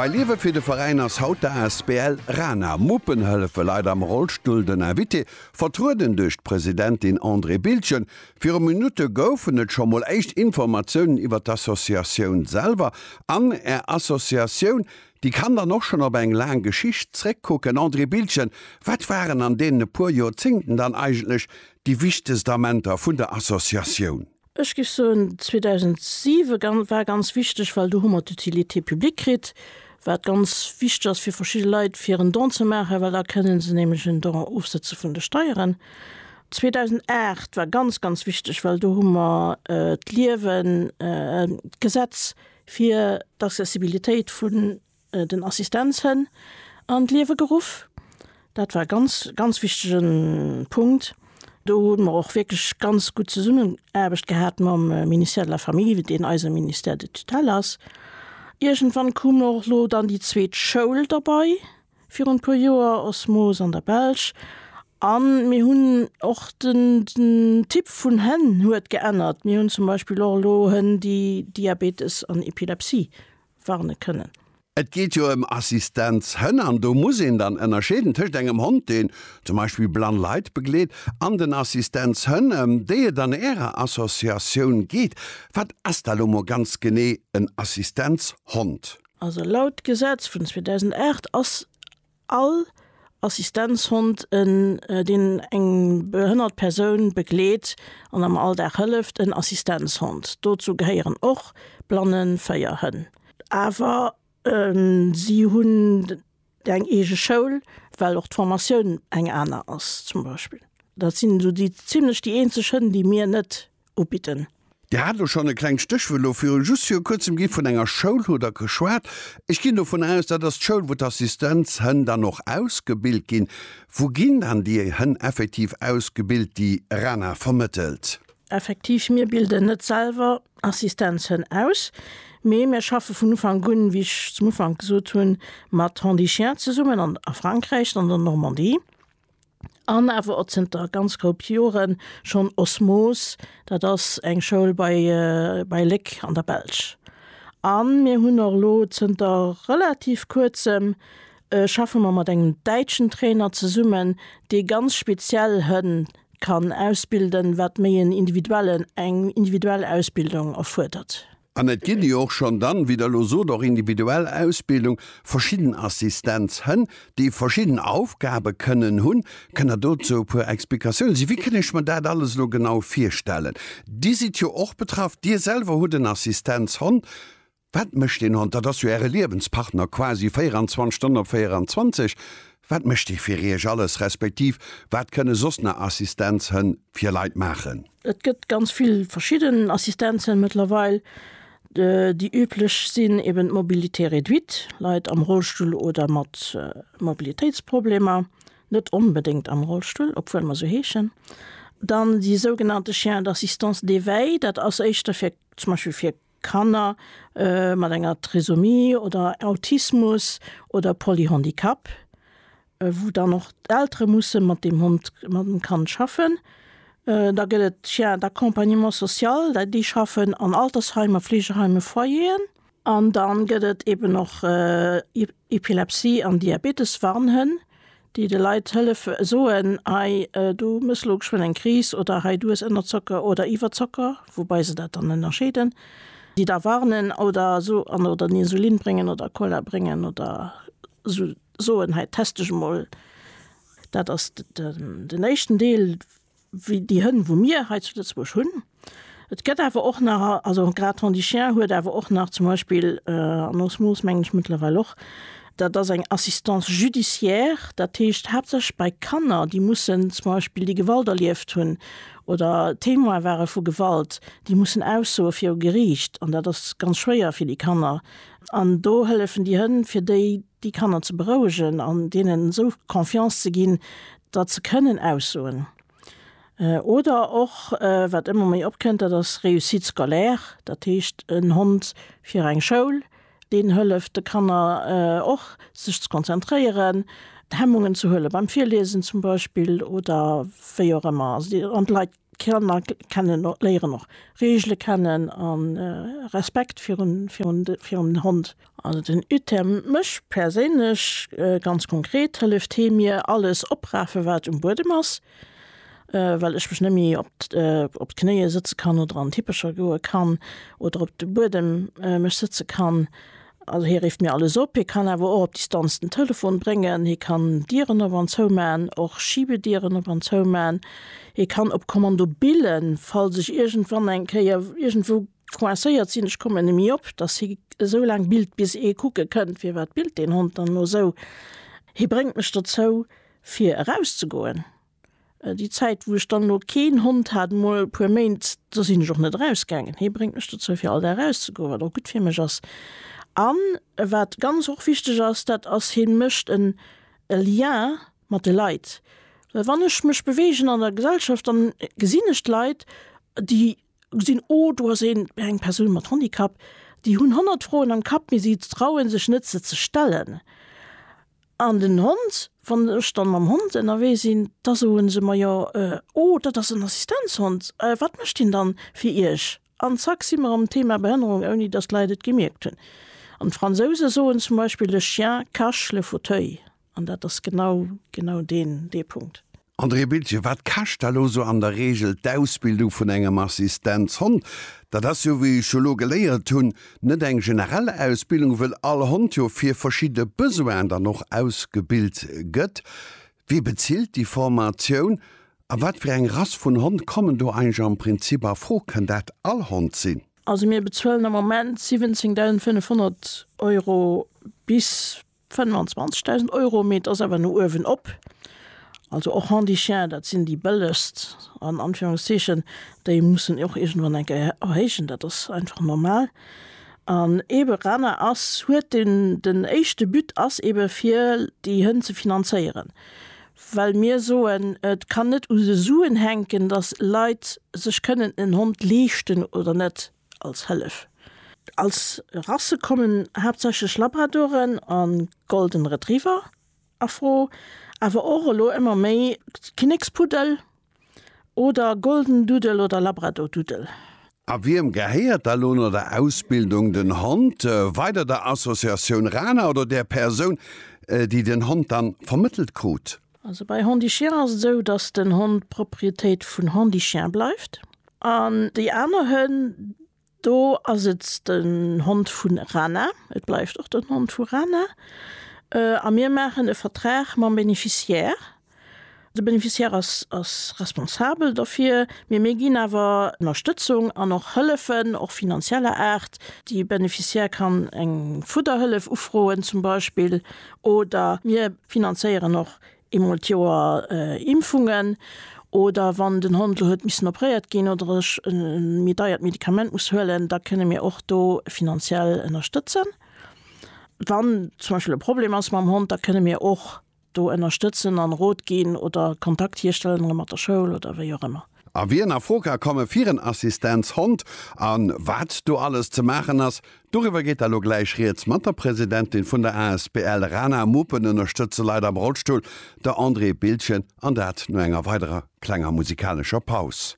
Bei Liewe fir de Veräin ass haut d'ASBL Rana. Muppen hëllefe Leit am Rollstull. Den Invité, vertrueden duerch d'Presidentin Andrée Bildgen. Viru Minutte goufen et scho mol éischt Informatiounen iwwer d'Associatioun selwer an Är Associatioun. Déi kann dann och schonn op eng laang Geschicht zréckkucken. Andrée Bildgen, wat waren an deenen e puer Joerzéngten dann eigentlech déi wichtegst Amenter vun der Associatioun? Ech géif soen 2007 war ganz wichteg, well do hu mer d'Utilité publique kritt, wat ganz wichteg ass fir verschidde Leit fir en Don ze maachen, well da kënne se nämlech en Don ofsëtze vun de Steieren. 2008 war ganz ganz wichteg, well do hu mer d'Liewen, d'Gesetz fir d'Accessibilitéit vun, den Assistenzhënn an d'Liewe geruff. Dat war e ganz, ganz wichtige Punkt. Do hu mer och wierklech ganz gutt Zesummenaarbecht gehat mam Ministère de la Famille, deen eise Ministère de tutelle ass. Iergendwann koom och elo dann déi zweet Schoul derbei, virun e puer Joer, Osmose an der Belsch. A mir hunn och den, den Typ vun Hënn huet geännert. Mir hunn zum Beispill och elo Hënn, déi Diabetes an Epilepsie warne kënnen. Et geet jo ëm Assistenzhënn an do muss een dann ënnerscheeden tëscht engem Hond, deen zum Beispill blann Leit begleet, an den Assistenzhënn, ëm déi et an Ärer Associatioun geet. Wat ass da lo mol ganz genee en Assistenzhond? Also laut Gesetz vun 2008 ass All Assistenzhond, en deen eng behënnert Persoun begleet an am Alldag hëlleft, en Assistenzhond. Dozou gehéieren och blannen Féierhënn. Awer si hunn eng eege Schoul, well och d'Formatioun eng aner ass zum Beispill. Dat sinn esou déi zimlech déi eenzeg Hënn, déi mir net ubidden. Dir hat elo schonn e klengt Stéchwuert viru just viru kuerzem ginn. Vun enger Schoul hutt Der geschwat. Ech ginn dovun aus, dat ass d'Schoul, wou d'Assistenzhënn dann och ausgebilt ginn. Wou ginn dann déi Hënn effektiv ausgebilt, déi RaNA vermëttelt? Effektiv, mir bilden net selwer Assistenzhënn aus, mee mir schaffe vun Ufank un, wéi ech zum Ufank gesot hunn, mat Handichiens zesummen an a Frankräich, an der Normandie. an awer och zënter ganz koup Jore schonn Osmos, dat ass eng Schoul bei bei Léck an der Belsch. A mir hunn och elo zënter relativ Kuerzem schaffe mer mat engem däitschen Trainer zesummen, dee ganz speziell Hënn kann ausbilden, wat méi en individuellen eng individuell Ausbildung erfuerdert. An et ginn jo och schonn dann, wéi Der elo sot, och individuell Ausbildung, verschidden Assistenzhënn, déi verschidden Aufgabe kënnen hunn. Kënnt Der dozou e puer Explikatiounen si? Wéi kënn ech mer dat alles elo genau virstellen? Dir sidd jo och betraff, Dir selwer hutt en Assistenzhond. Wat mécht deen Hond? Dat ass jo Äre Liewenspartner quasi 24 Stonnen op 24. Wat mécht Dir fir Iech alles, respektiv wat kënne soss nach Assistenzhënn fir Leit maachen? Et gëtt ganz vill verschidden Assistenzhënn mëttlerweil. Déi üblech sinn eben d'Mobilité réduite, Leit am Rollstull oder mat Mobilitéitsproblemer, net onbedéngt am Rollstull, obwuel mer esou heeschen. Dann déi sougenannte Chiens d'assistance d'éveil, dat ass éischter fir zum Beispill fir Kanner mat enger Trisomie oder Autismus oder Polyhandicap, wou dann och d'Eltere musse mat deem Hond, mat dem Kand schaffen. Da gëtt et d'Chiens d'accompagnement social, déi schaffen an Altersheimer, Fleegeheime, Foyeren. An da gëtt et eeben och Epilepsie an Diabetes-Warnhënn. déi de Leit hëllefe soen, hei du muss elo geschwënn eng Kris oder hei du hues Ënnerzocker oder Iwwerzocker, woubei se dat dann ënnerscheeden, déi da warnen oder esou an oder den Insulin bréngen oder Cola bréngen oder soen, hei test dech emol. Dat ass den éischten Deel. wéi déi Hënn wou mir hei zu Lëtzebuerg hunn. Et gëtt awer och nach, also grad Hond du chien huet awer och nach zum Beispill, an Osmose mengen ech mëttlerweil och, dat ass eng Assistance judiciaire, dat heescht haaptsächlech bei Kanner déi mussen zum Beispill déi Gewalt erlieft hunn oder Témoin ware vu Gewalt, déi mussen aussoe viru Geriicht an dat ass ganz schwéier fir déi Kanner. An do hëllefen déi Hënn fir déi déi Kanner ze berouegen an deenen esou Confiance ze ginn, dat ze kënnen aussoen, oder och wat ëmmer méi opkënnt, dat ass Réussite scolaire, dat heescht en Hond fir eng Schoul, deen hëlleft de Kanner och sech ze konzentréieren, Hemmungen ze huele beim Virliesen zum Beispill oder wéi och ëmmer. An d'Leit D'Kanner kennen och, léieren och Regele kennen a Respekt virun, virun de, virun den Hond. Also den UTEM, mech perséinlech ganz konkret hëlleft hee mir alles oprafen, wat um Buedem ass, well ech mech net méi op op d'Knéie sëtze kann oder an d'Hippecher goe kann oder op de Buedem mech sëtze kann. Also hie rifft mir alles op, hie kann awer och op Distanz den Telefon bréngen, hie kann Dieren op an zou man, och Schiebedieren op an zou man, hie kann op Kommando billen, falls ech iergendwann eng Kéier iergendwou coincéiert sinn, ech kommen net méi op, dass hie esou laang billt, bis ee kucke kënnt, firwat billt deen Hond dann elo esou. Hie bréngt mech dozou, fir erauszegoen. Déi Zäit, wou ech dann elo keen Hond hat, mol e puer Méint, do sinn ech och net erausgaangen. Hie bréngt mech dozou, fir all Dag erauszegoen, wat och gutt fir mech ass. An wat ganz och wichteg ass, dat ass, hien mécht en e Lien mat de Leit. Well wann ech mech beweegen an der Gesellschaft, dann gesinn ech d'Leit, déi gesinn, oh do ass een, eng Persoun mat Handicap. Déi hunn honnert Froen am Kapp, mee si trauen sech net, se ze stellen. An den Hond, wann ech dann mam Hond ënnerwee sinn, da soe se mer, jo, oh, dat ass en Assistenzhond, wat mécht deen dann fir Iech? An zack si mer am Thema Behënnerung, ouni datt d'Leit et gemierkt hunn. An d'Fransouse soen zum Beispill, le chien cache le fauteuil. An dat ass genau, genau deen, dee Punkt. André Biltgen, Wat kascht da lo sou an der Regel d'Ausbildung vun engem Assistenzhond? Dat ass jo, wéi ech jo lo geléiert hunn, net eng generell Ausbildung, wëll all Hond jo fir verschidde Besoinen dann och ausgebilt gëtt. Wie bezilt déi Formatioun a wat fir eng Rass vun Hond kommen do eigentlech am Prinzip a Fro? Kënn dat all Hond sinn? Also mir bezuelen am Moment 17.500 Euro bis 25.000 Euro, mee et ass awer no uewen op. Also och Handichiens, dat sinn déi bëllegst an Anführungszeechen, déi mussen ee och iergendwann eng Kéier erhéijen, dat ass einfach normal. An eebe Rana ass, huet den, den éischte But ass eebe fir déi Hënn ze finanzéieren, well mir soen, et kann net u de Suen hänken, datt Leit sech kënnen en Hond leeschten oder net. als Hëllef. Als Rasse kommen haaptsächlech Labradoren a Golden Retriever a Fro, awer och elo ëmmer méi Kinnekspuddel oder Golden Doodle oder Labrador Doodle. A wiem gehéiert da lo no der Ausbildung den Hond? Weider der Associatioun Rana oder der Persoun, déi den Hond dann vermëttelt krut? Also bei Handichiens ass et esou, datt den Hond d'Propriétéit vun Handichien bleift an déi aner Hënn, do ass et den Hond vun Rana, et bleift och den Hond vu Rana a mir maachen e Vertrag mam Bénéficiaire. De Bénéficiaire ass ass responsabel dofir, mee mir ginn awer Ënnerstëtzung an och Hëllefen, och finanzieller Aart. De Bénéficiaire kann eng Fudderhëllef ufroen zum Beispill. Oder mir finanzéieren och eemol d'Joer Impfungen. Oder wann den Hond elo huet missen opréiert ginn oder ech e méi deiert Medikament muss huelen, da kënne mir och do finanziell ënnerstëtzen. Wann zum Beispill e Problem ass mam Hond, da kënne mir och do ënnerstëtzen an Rot ginn oder Kontakt hierstellen mat der Schoul oder wéi och ëmmer. A wien a Fro ka komme fir en Assistenzhond a wat do alles ze maachen ass, doriwwer geet der elo gläich Rieds mat der Presidentin vun der asbl Rana Muppen ënnerstëtze Leit am Rollstull, der Andrée Bildgen, an dat no enger weiderer klenger musikalescher Paus.